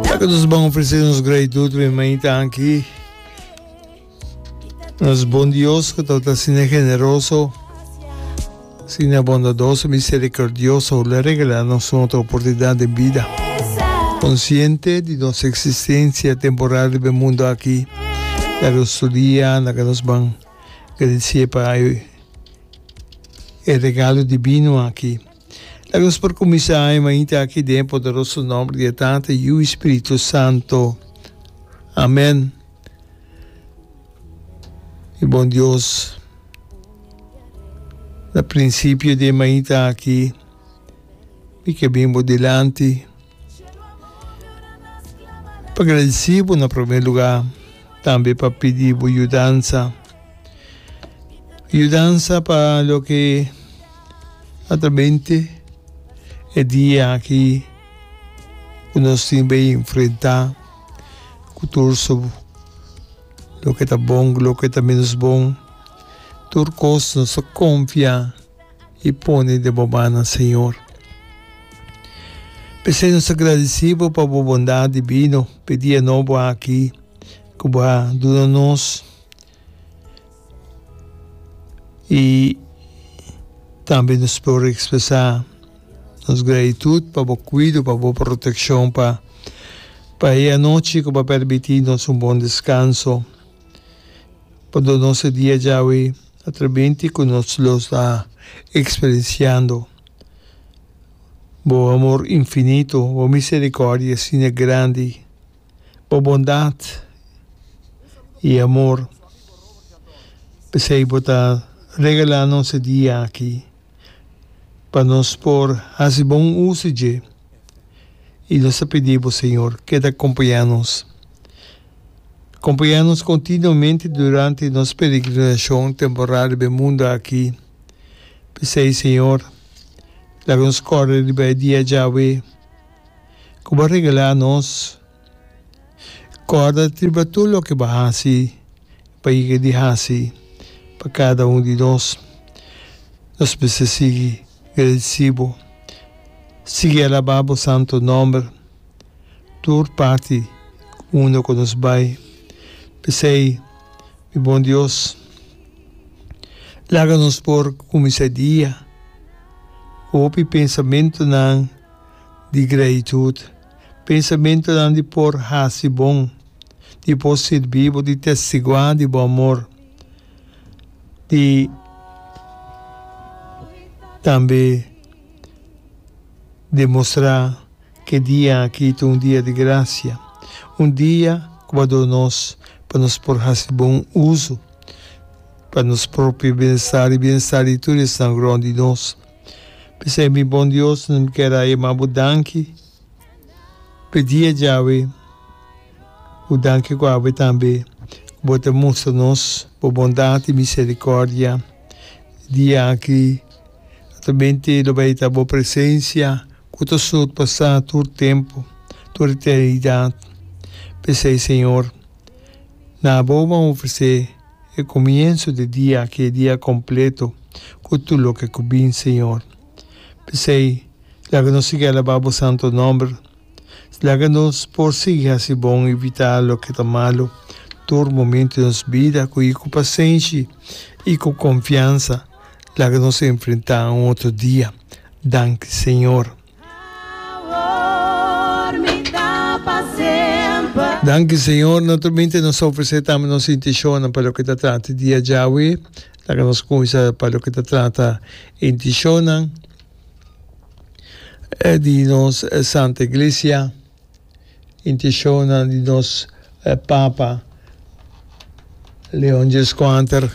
Taka nos bon ofrece nos gratitud riba e mainta aki. Nos bon Dios que tawta sine generoso, sine bondadoso, misericordioso, le regala nos un otro oportunidad de vida. Consciente di nos existencia temporal riba e mundo aki, na que nos studia, na que nos ban gradicia pa e regalo divino aki. Laga nos por kuminsá e mainta aki den e poderoso nòmber di e Tata, Yu i Spiritu Santu. Amèn. Mi bon Dios, na prinsipio di e mainta aki mi ke bin bo dilanti. Pa gradisí bo na promé lugá, tambe pa pidi bo yudansa. Yudansa pa loke a ta mente e dia aki ku nos tin bay enfrentá ku tur su loke ta bon ku loke ta ménos bon. Tur kos nos ta konfia. i pone den bo mannan, Señor. P'esei nos ta gradici bo pa bo bondad divino p'e dia nobo aki cu bo a duna nos i tambe nos por expresa nos gratitud pa bo cuido, pa bo proteccion pa pa e anochi cu bo a permiti nos un bon descanso, pa duna nos e dia djawe. Atremente cu nos lo sta experienciando. Bo amor infinito, bo misericordia asina grandi, bo bondad y amor. P'esey bo ta regala nos e dia aki pa nos por haci bon uso dje. I nos ta pidi bo, Señor, keda kompañá nos. Kompañá nos kontinuamente durante nos peregrinashon temporal riba e mundu aki. P'esei, Señor, laga nos kòrda riba e dia djawe ku bo a regalá nos. Corda riba tur loke bo haci, pa yega di haci pa cada un di nos. Nos mester sigui gradeci bo, sigui alaba bo santo nomber tur parti unda cu nos bay. P'esey, mi bon Dios, laga nos por cuminsa e dia cu hopi pensamentonan di gratitud. Pensamentunan di por hasi bon, di por sirbi bo, di testiguá di bo amor, di tambe demostrá ke dia aki ta un dia di grasia, un dia ku bo a duna nos pa nos por hasi bon uso pa nos propio bienestar i bienestar di tur esnan rònt di nos. P'esei mi bon Dios, mi kier a yama bo danki pa e dia djawe, un danki ku awe tambe ku bo ta mustra nos bo bondat i miserikòrdia. Dia aki ata bin te lo bai ta bo presensia ku ta surpasá tur tempu, tur eternidat. P'esei, Señor, na abo bo a ofresé E comienso di dia aki e dia completo cu tur loke cu bin, Señor. P'esey, laga nos sigui alaba bo santo nomber. Laga nos por sigui haci bon y vita loke ta malo tur momento di nos bida, cu y cu pasenshi y cu confiansa laga nos enfrenta un otro dia. Danki, Señor. Danki Señor, no tolmente nos ta ofrecé tambe nos intencionnan pa loke ta trata e dia djawe. Laga nos cuminsa pa loke ta trata e intencionnan di nos Santa Iglesia. Intishonnan di nos Papa Leon Djeskwater,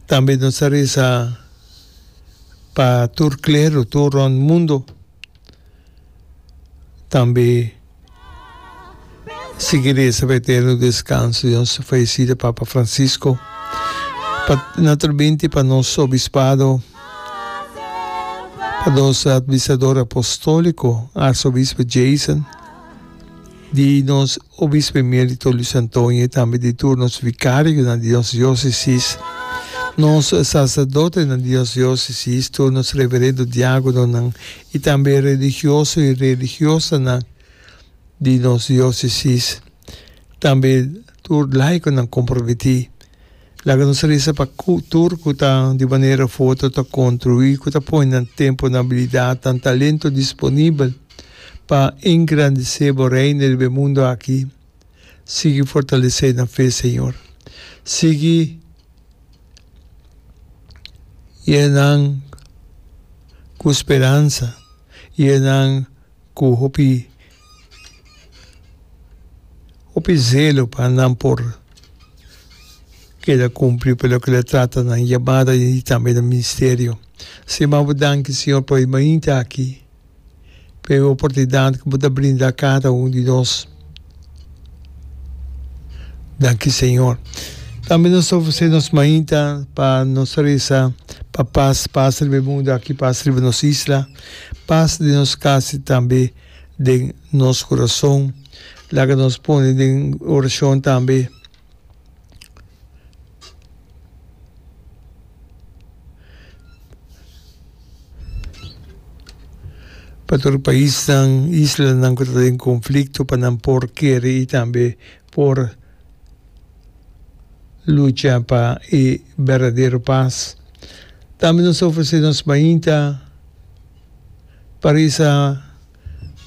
tambe nos ta resa pa tur klero tur rond mundo tambe sigui resa pa eterno deskanso di nos fayesido Papa Francisco, pa na tur binti pa nos Obispado. Pa nos Administrador Apostólico, Arsobispo Jason, di nos Obispo Emérito Luis Antonio y tambe di tur nos Vicarionan di nos Diócesis, nos Sacerdotenan di nos Diócesis, tur nos Reverendo Diácononan y tambe Religioso y Religiosanan di nos Diócesis, tambe tur Laiconan comprometí. Laga nos resa pa tur cu ta di manera foto ta construi cu ta pone nan temponan habilidadnan talento disponibel pa engrandece Bo Reino riba e mundo aki. Sigui fortalece nan fe, Señor. Sigui yenanan cu speransa y yenanan cu hopi. Hopi zelo pa nan por keda cumpli pa loke lo trata nan yamada y tambe nan ministerio. Sima bo danki Señor pa e mainta aki, pa e oportunidad cu bo ta brinda cada un di nos. Danki Señor. Tambe nos ta ofrece nos mainta pa nos ta reza pa paz, paz riba e mundo aki, paz riba nos isla, paz den nos cas y tambe. den nos kurason. Laga nos pone den orashon tambe pa tur paisnan, islanan ku ta den konflikto pa nan por kere i tambe por lucha pa e berdadero pas. Tambe nos ta ofresé nos mainta. Pa risa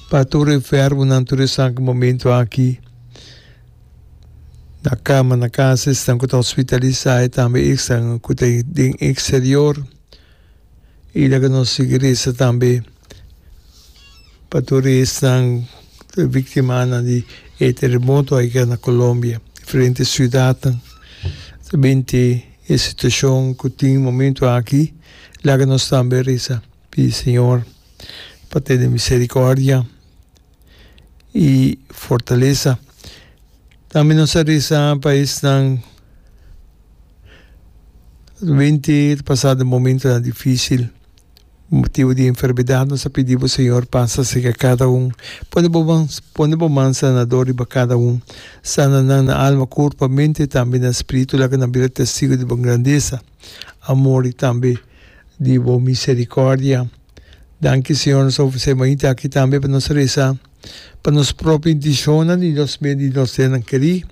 pa tur e ferbonan, tur esnan ku momentu aki na kama na kasa, esnan ku ta hospitalisá i tambe esnan ku ta den eksterior. I laga nos sigui resa tambe pa tur esnan ku ta viktimanan di e teremoto aiga na Colombia, diferente siudatnan. Binte e situashon ku tin momentu aki, laga nos tambe resa. Pidi Señor pa tene misericordia y fortalesa. Tambe nos a reza pa esnan winti ta pasa den momentonan dificil motibo di enfermedad. Nos a pidi bo Señor pasa cerca cada un, pone bo man, pone bo man sanador riba cada un. Sana nan na alma, curpa, mente y tambe na spiritu. Laga nan bira testigo di bo grandeza, amor y tambe. di bo misericordia. Danki Señor nos a ofrece mainta aki tambe pa nos reza pa nos propio intencionnan y nos mey di nos senan keri.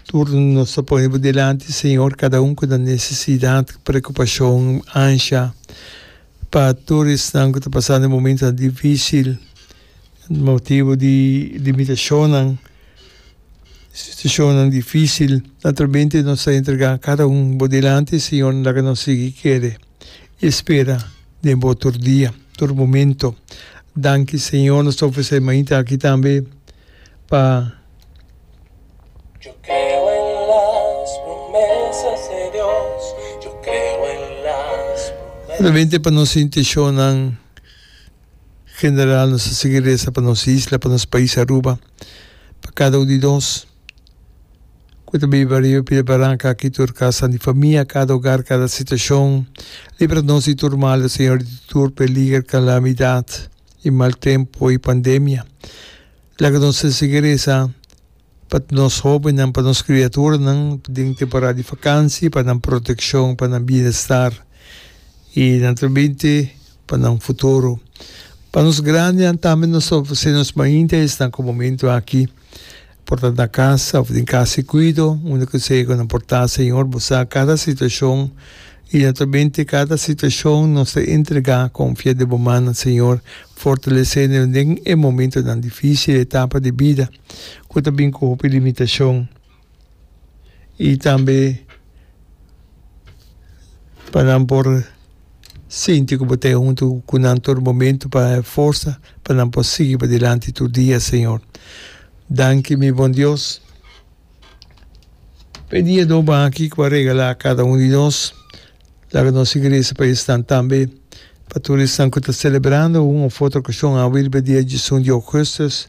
Tur nos ta pone bo delanti Señor cada un cu ta necesidad, preocupacion, ansha pa tur esnan cu ta pasando momentonan dificil. Motibu di limitashonnan, situashonnan difísil, naturalmente nos ta entregá kada un bo dilanti, Señor, laga nos sigui kere i spera den Bo tur dia, tur momento. Danki, Señor, nos ta ofresé mainta aki tambe pa. Naturalmente pa nos inteshonnan. General nos a sigui resa pa nos isla, pa nos pais Aruba, pa cada un di nos cu ta biba riba e pida baranca aki, tur casanan di famia, cada hogar, cada situacion. Libra nos di tur mal, oh Señor, di tur peliger, calamidad y mal tempo y pandemia. Laga nos a sigui resa. Pa nos hóbennan, pa nos kriaturanan den temporada di fakansia, pa nan protekshon, pa nan bienestar i nan tamenti pa nan futuro. Pa nos grandinan tambe nos ta ofresé nos mainta esnan ku momentu aki por ta na kasa òf den kasa di kuido unda ku esei ku nan por ta. Señor, Bo sa kada situashon i naturalmente kada situashon nos ta entregá, konfiá den Bo mannan, Señor. Fortalesé nan den e momentunan difísil, e etapa di bida. ku ta bin ku hopi limitashon i tambe pa nan por sinti ku bo ta huntu ku nan tur momentu pa e forsa pa nan por sigui padilanti tur dia señor. Danki mi bon Dios pa e dia doba aki ku bo a regala kada un di nos. Laga nos iglesia pa esnan tambe pa tur esnan ku ta selebrando un of otro okashon awor riba dia dies un di ougustus.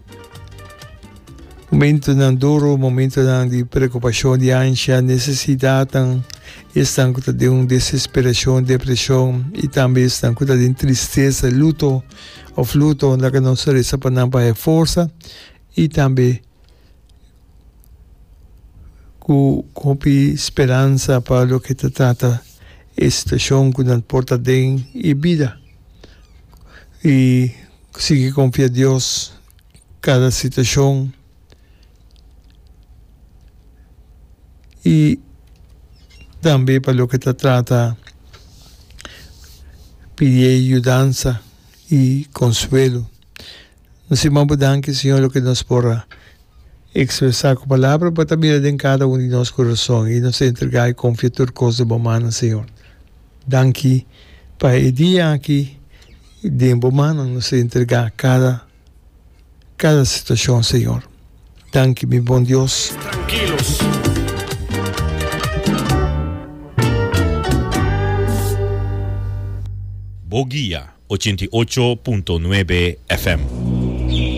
Momentunan duru, momentunan di preokupashon, di ansha, nesesidatnan, esnan ku ta den un desesperashon, depreshon i tambe esnan ku ta den tristesa, luto òf luto. Laga nos resa pa nan pa e forsa i tambe ku hopi speransa pa loke ta trata e situashon ku nan por ta den e bida. I Sigui konfia Dios kada situashon i tambe pa loke ta trata pidié yudansa i konsuelo. No si maba danki Siñor loke nos por a ekspresá ku palabra, bo ta mira den kada un di nos kurason i nos ta entregá i konfia tur kos den bo mannan Siñor. Danki pa e dia aki I den bo mannan nos a entregá kada, kada situashon, Señor. Danki, mi bon Dios. Mes trankilu. Bo guia, ochenta i ocho punto nuebe FM.